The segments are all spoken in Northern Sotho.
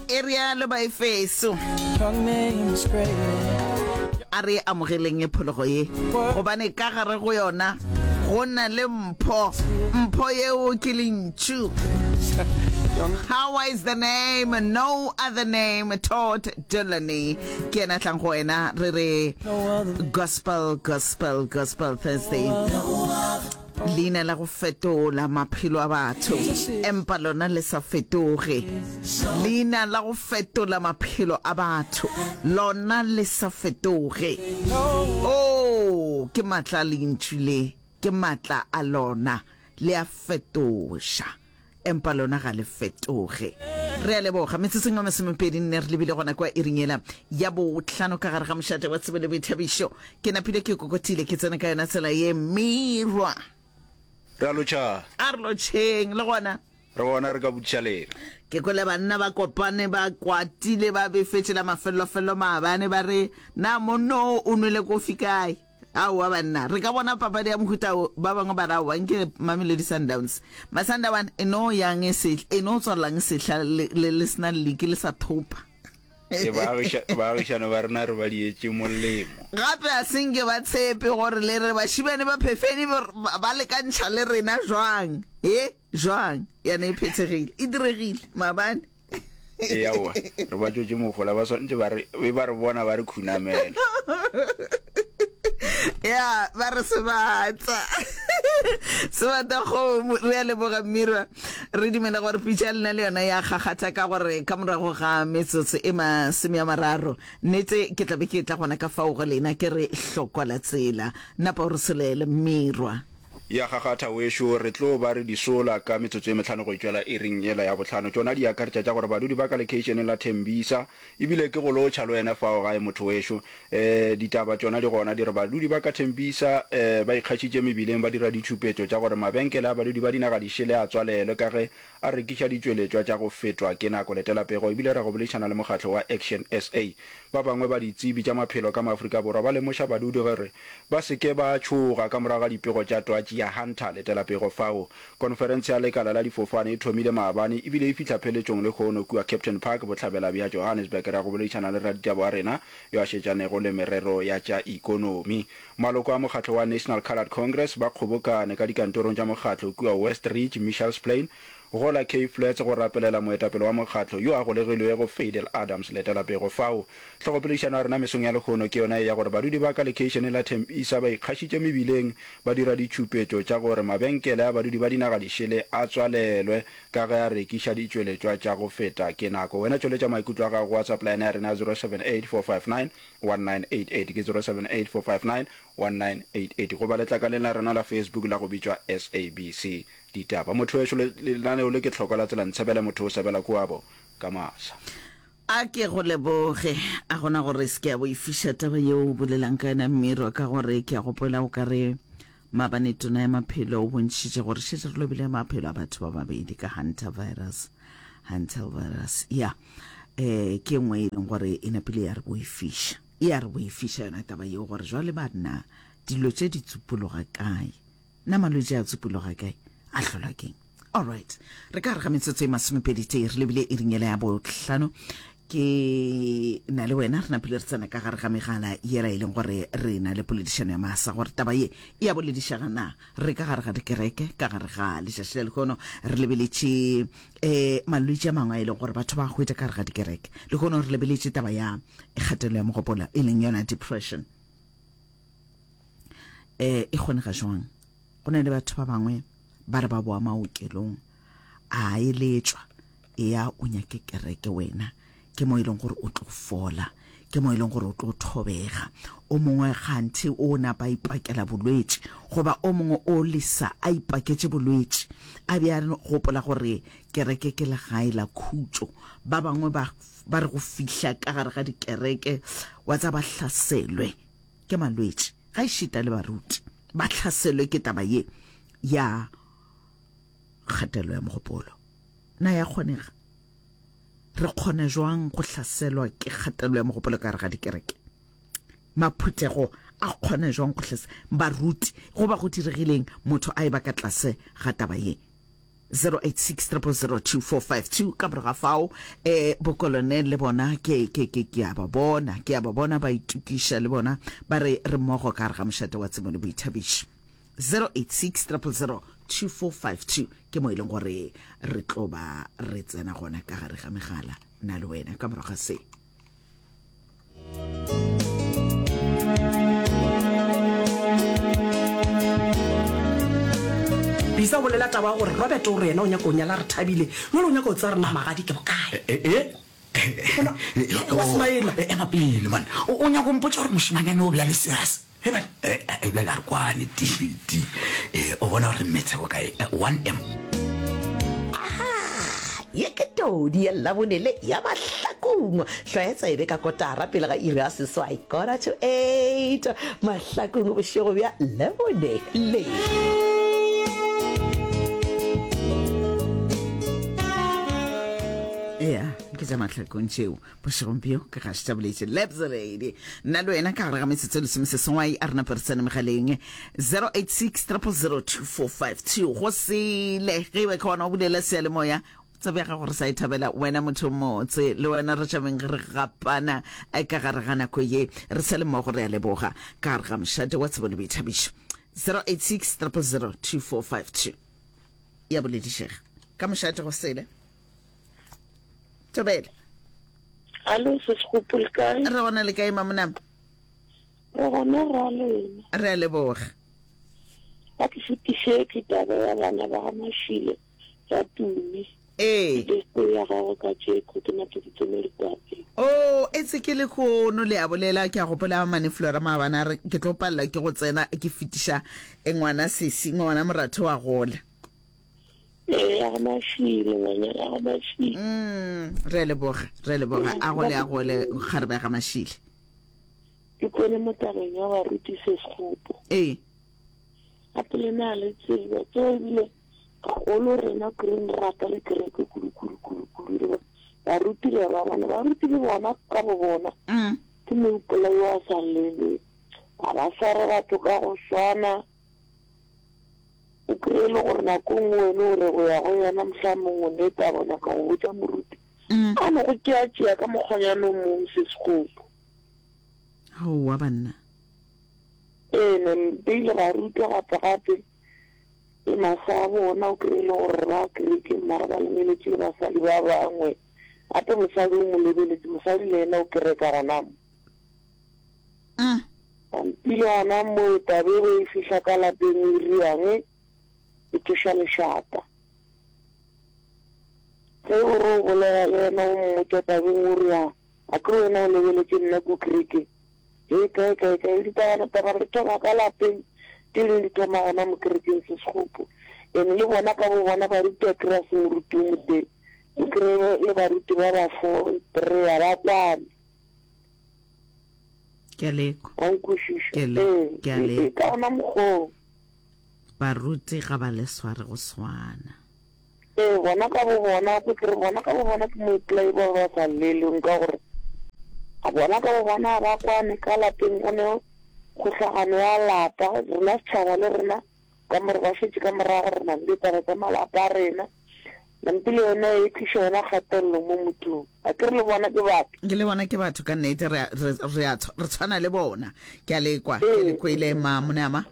e realo baefeso a re amogeleng e phologo ye gobane ka gare go yona go na le mpho mpho yeo ke lentšu How is the name? No other name. Todd Dulaney. Ke ena tlang go wena re re Gospel Gospel Gospel Thursday. Leina la go fetola maphelo a batho, empa lona le sa fetoge. Leina la go fetola maphelo a batho, lona le sa fetoge. Oh, ke matla a lentšu le, ke matla a lona, le a fetoša. empa lona ga le fetoge re a leboga metseseng wa masomepedi nne re lebile gona kwa iringela ya botlhano ka gare ga mošate wa tsebo le boithabišo ke napile ke kokotile ke tsena ka yona tsela ye merwa re a lotšhang a re lotšheng le gona re bona re ka botšalela ke kwele banna ba kopane ba kwatile ba befetšela mafelelofelo maabane ba re na monno o nwele kofi kae Aowa banna, re ka bona papadi ya mohuta wo. Ba bangwe ba re aowa, nke re Mamelodi Sundowns. Masandawana e no yang e se, e no tswalelang sehla le, le, le sena liki, le sa thopa. E baagiša, baagišane ba rena re ba dietše molemo. Gape a se nke ba tshepe gore le re bašibane ba phefeni ba, ba lekantšha le rena. Jwang? He, jwang? Yana e phethegile. E diregile. Maabane. eaowa re ba tswetse mogola ba swanetse ba re be ba re bona ba re khunamela ya ba re sebata sebata kgomo re ya leboga mmirwa re dumela gore pitša lena le yona ya gakgatha ka gore ka morago ga metsotso e masome ya mararo nete ke tlabe ke tla gona ka fao go lena ke re hlokola tsela napa o re selele mmirwa Ya kgakgatha wešo, re tlo ba re di sola ka metsotso e mehlano go e tšwela iring yela ya bohlano. Tšona di akaretša tša gore badudi ba ka lekeišeneng la Tembisa, e bile ke go lotšha le wena fao gae motho wešo. Ee, ditaba tšona di gona di re badudi ba ka Tembisa ba ikgašitše mebileng ba dira ditšhupetšo tša gore mabenkele a badudi ba dinaga di šele a tswalelwe ka ge A rekiša ditšweletšwa tša go fetwa ke nako. Letela pego e bile ra go boledišana le mokgatlo wa Action sa. Ba bangwe ba ditsebi tša maphelo ka Maafrika Borwa ba lemoša badudi gore ba se ke ba tšhoga ka morago ga dipego tša twatši ya Hunter. Letela pego fao. Konferense ya lekala la difofane e thomile maabane e bile e fihla pheletšong lehono kua Captain Park, bohlabela bja Johannesburg. Ra go boledišana le raditaba wa rena yo a šetšanego le merero ya tša ikonomi. Maloko a mokgatlo wa National Coloured Congress ba kgobokane ka dikantorong tša mokgatlo kua West Ridge, Mitchell's Plain, go la Cape Flats go rapelela moetapele wa mokgatlo yo a golegilwego Fadel Adams letelapego fao. Hlogopoledišano ya rena mesong ya lehono ke yona e ya gore badudi ba ka lekeišeneng la Tembisa ba ikgašitše mebileng ba dira ditšhupetšo tša gore mabenkele a badudi ba dinaga di šele a tswalelwe ka ge a rekiša ditšweletšwa tša go feta ke nako. Wena tšweletša maikutlo a gago go WhatsApp line ya rena ya 078459 1988 ke 0784591988 goba letlakaleng la rena la Facebook la go bitšwa SABC Ditaba. Mothoweso le lenaneo le ke tlhoko la tsela Ntshebele motho o sebela kuabo ka masa. A ke go leboge. A gona gore se ke a boifiša taba yeo o bolelang ka yona Mmirwa ka gore ke a gopola o ka re Maabane tona ya maphelo o bontšhitše gore šetše re lobile maphelo a batho ba babedi ka Hunter virus. Hunter virus, ya eh ke e nngwe e leng gore e napile ya re boifiša. E a re boifiša yona taba yeo gore jwale banna dilo tše di tsupologa kae. Na malwetši a tsupologa kae? A hlolwa keng? Alright, re ka re ga metsotso e masomepedi tee re lebile iring yela ya bohlano ke na le wena re napile re tsena ka gare ga megala yela e leng gore re na le poledišano ya masa gore taba ye e ya boledišaga na re ka gare ga dikereke ka gare ga lešaši la lehono re lebeletše um malwetši a mangwe a e leng gore batho ba hwetša ka gare ga dikereke lehono re lebeletše taba ya kgatelo ya mogopolo e leng yona depression um e kgone ga jwang Go na le batho ba bangwe ba re ba boa maokelong a eletšwa eya o nyake kereke wena ke mo e leng gore o tlo fola ke mo e leng gore o tlo thobega o mongwe ganthe o ne ba ipakela bolwetši goba o mongwe o lesa a ipaketše bolwetši a be a gopola gore kereke ke legae la khutšo ba bangwe ba re go fihla ka gare ga dikereke wa tsa ba hlaselwe ke malwetši ga e šita le baruti ba hlaselwe ke taba ye ya kgatelo ya mogopolo na ya kgonega re kgona jwang go hlaselwa ke kgatelo ya mogopolo ka gare ga dikereke maphuthego a kgona jwang go hlasa baruti go ba go diregileng motho a e ba ka tlase ga taba ye 0860002452 ka moraga fao um eh, bokolone le bona ke ke ke ke a ba bona ke a ba bona ba itukiša le bona ba re re mmogo ka gare ga mošate wa tsemo le boithabiši 0860002452 ke mo e leng gore re tlo ba re tsena gona ka gare ga megala na le wena ka morago ga se bisa o bolela taba ya gore robert o re yena o nyaka o nyala re thabile nole o nyaka o tsaya rena magadi ke bokae eh, eh, eh. Wa smaila. Eh, ema pele man o o nyako mpotsa gore mošemanyane o bja le serious Ge ba ebile la re kwane TD o bona gore metse go kae 1M. Aha! Ye ke todi ya Labone le ya mahlakong. Hlwaya tsebe ka kotara pele ga iri ya seswai, quarter to eight, mahlakong bošego bja Labone le. Ea, ke tša mahlakong tšeo. bošegong bjo ke ga se tšaboletše lebzeredi nna le wena ka gare ga metsotso lesome se sengwai a rena peresane megaleng 0860002452 go sele ge e be ka ona o bulela seyalemoya tsebja ga gore sa e thabela wena motho motse le wena re tšabeng re gapana eh, ka gare ga nako ye re sa le mmogo re ya leboga ka gare ga mošate wa tsebo le boithabišo 0860002452 ya boledišega ka mošate go sele tobele Alo se sekgopol kae? re gona le kae mamonama Re gona ra lena. re a leboga Ba ke fetišetše taba ya bana ba ga Mashilo ba tume. ee Beste ya gago ka tšeko ke makeditse mo likwapeng. o Oh, e se ke lekgono le a bolela ke a gopola mane flora maabana a re ke tlo palelwa ke go tsena ke fetiša eh, ngwana sesi ngwana moratho wa gola ya go mafile ngwanyana ya go mafile mm, re leboge re leboge a gole a gole kgarebe ga mashile ke kwele mo tabeng ya baruti se sekgopo ee gape le na le tsebo tso ebile gagolo rena green rata le kereke kudukudukudukudu baruti le ba bona baruti le bona ka bo bona mm. ke moipolai wa sa lele ga ba sware batho ka go swana E tlo e le gore nako e nngwe wena o re go ya go yena, mohlomong o ne taba o nyaka go botša moruti a no go tšeatšea ka mokgwanyana o mong se sekgopo. Aowa banna. Ee, ne ba ile ba rutwa gape gape le masa a bona o kry-e le gore ba kerekeng mara ba lemeletše le basadi ba bangwe gape mosadi o mo lebeletse mosadi le yena o kereka gona mo. Hm. Pampilwana moepa be be e fihla ka lapeng e riang e tsoša lešata. Ge o re o bolela le yena o mmotša tabeng o re a a ke wena o lebeletše nna ku kreke hei kae kae kae ditaba taba re thoma ka lapeng ke leng di thoma gona mo kerekeng se segopo ene le bona ka bo bona baruti a kry-a se moruti o moteng o kry-e le baruti ba ba fo three ba kwane. ke a lekwa wa nkwešiša Ke le- ee ke a ee, le- ee, ka gona mokgoo baruti ga ba le sware go swana ee bona ka bo bona ko ke re bona ka bo bona ke moipolai ba ba sa llelweng ka gore a bona ka bo bona ga ba kwane ka lapeng go ne kgohlagano ya lapa rena setšhaba le rena Ka mo re ba šetše ka morago re na le ditaba tša malapa a rena. Lampi le yona e tliša yona kgatelelo mo mothong. A ke re le bona ke batho? Ke le bona ke batho ka nnete, re, re, re, a, re tshwana le bona. Ke a le kwa, ke le kwele, ma, mone ama.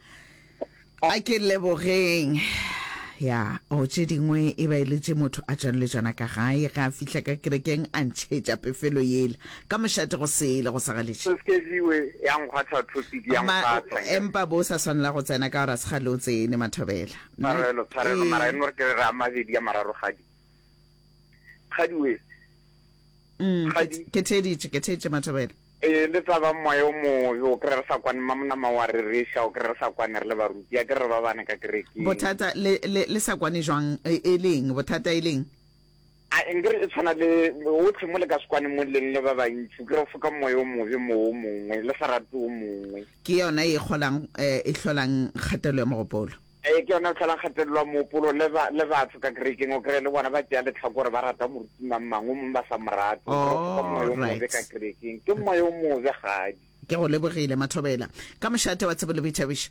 A ke lebogeng. Ya, o tše dingwe e ba e le tše motho a tšwanletšana ka gae, ge a fihla ka kerekeng a ntšhetša pefelo yela. Ka mošate go sele go sa galetše. Skeziwe ya nkgwatha topic ya Ma, nkgwatha nke. empa bo sa swanela go tsena ka gore a se kgale o tsene, Mathobela. Nna, Tshwarelo tshwarelo mara e ee. nno re ke re re a mabedi a mararo kgadi. Kgadi wee. Umm, ke, Kgadi. ke theeditše, ke theeditše Mathobela. Ee le taba moya o mobe o kry-e re sa kwane mma monama wa rereša o kry-e re sa kwane re le baruti a ke re re ba bane ka kerekeng. Bothata le, le, le sa kwane jwang? E, e leng? Bothata e leng? A nke re e tshwana le bohle mo le ka se kwane mo leng le ba bantši, ke re foka moya o mobe mo o mongwe le sa rate o mongwe. Ke yona e kgolang, e hlolang kgatelelo ya mogopolo. Ee, ke yona e hlolang kgatelelo ya mogopolo le ba, le batho ka kerekeng, o kry-e le bona ba tšea lehlakore, ba rata moruti mang mang, o mongwe ba sa mo rate. O kry-e o foka moya o mobe ka kerekeng, ke moya o mobe kgadi. Ke go lebogile Mathobela ka mošate wa Tsebo le Boithabišo.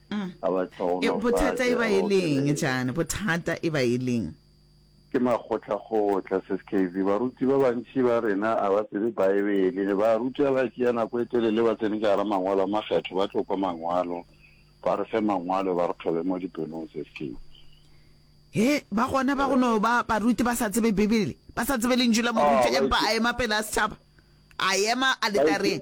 Mm. a ba E, tlhogonofatše bothata e ba e okay. leng jane bothata e ba e leng ke makgotlakgotla se skv baruti ba bantši ba rena a ba tsebe baebele ne ba ruta ba tšea nako e telele ba tsene ka gara mangwalo a makgetho ba tlo kwa mangwalo ba re fe mangwalo ba re thobe mo dipelong se skv he ba gona ba gono ba baruti ba sa tsebe bibele ba sa tsebe lentšu la moruti Ah, ba empa itse- a ema pele a setšhaba a ema aletareng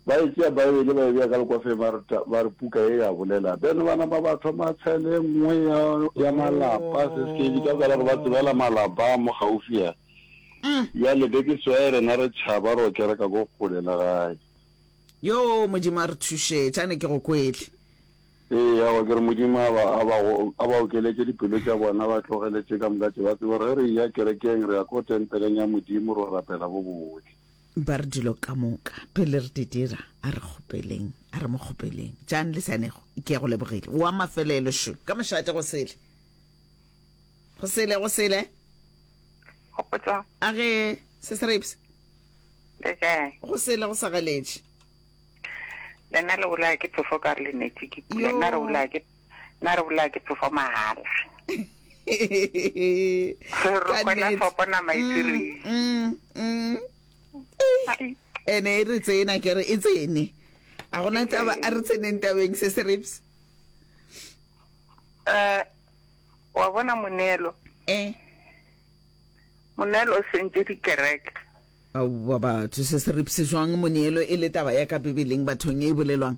Ba e tšea Baebele ba e bea ka lekwafeng ba re, Ta, ba re, Puka ye ya bolela. Then ba nama ba thoma cell e nngwe ya, ya malapa, se se ke bitša ka gore ba tsebela malapa a mo gaufi a. Bjale be ke swaya rena re tšhaba ro kereka ko kgole le gae. Yoo, Modimo a re thušetše. A ne ke go kwehle. Ee, aowa, ke re Modimo a ba, a ba go, a ba okeletše dipelo tša bona ba tlogele tše ka moka tše, ba tsebe gore ge re eya kerekeng re ya ko tempeleng ya Modimo ro rapela bo bohle. Ba re dilo ka moka pele re di dira, a re kgopeleng, a re mo kgopeleng. Jang le Sanego, ke ya go lebogile. Wa mafelelo šo, ka mošate go sele, go sele, go sele. Kgopotso. A ge se se reipse. Le kae? Go sele go sa galetše. Lena le bolaya ke phefo ka re le neti ke pula, nna re bolaya ke. Na re bolaya ke phefo mahala. Re rokgwela fopo nama e tsireng. Mm, mm, mm. Ene e re tsena ke re e tsene. A gona taba a re tseneng tabeng se se rips. Eh wa bona monelo. Eh. Monelo o sentse dikereke. Au ba batho se se rips jwang monelo e le taba ya ka Bibeleng bathong e bolelwang.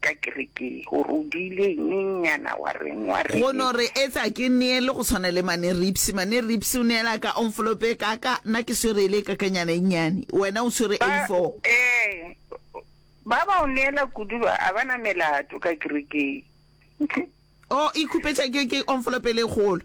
Ka kereke o robile nyenyana wa reng wa reng. Go no re etsa ke neele go tshwana le mane Ripsy. Mane Ripsy o neela ka envelope e kaka, nna ke swere ele e kakanyana e nnyane. Wena o swere A four. Ee, ba ba o neela kudu ba, a ba na melato ka kerekeng. Oh, ikhupetša ke, ke envelope ele e kgolo.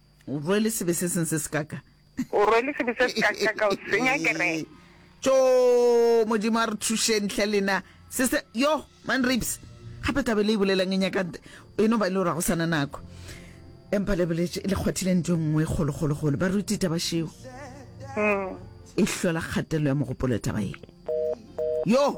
O rwele sebe se seng se sekaka. O rwele sebe se sekaka, o senya kereke. Tjo, Modimo a re thušeng hle lena. Se se, yo, man rapes. Gape tlabe le e bolelang e nyaka, e no ba e le gore go sana nako. Empa le boletše, le kgwathile ntho nngwe golo golo golo. Ba ruti taba šeo. Mm. E hlola kgatelo ya mogopolo taba ye. Yo!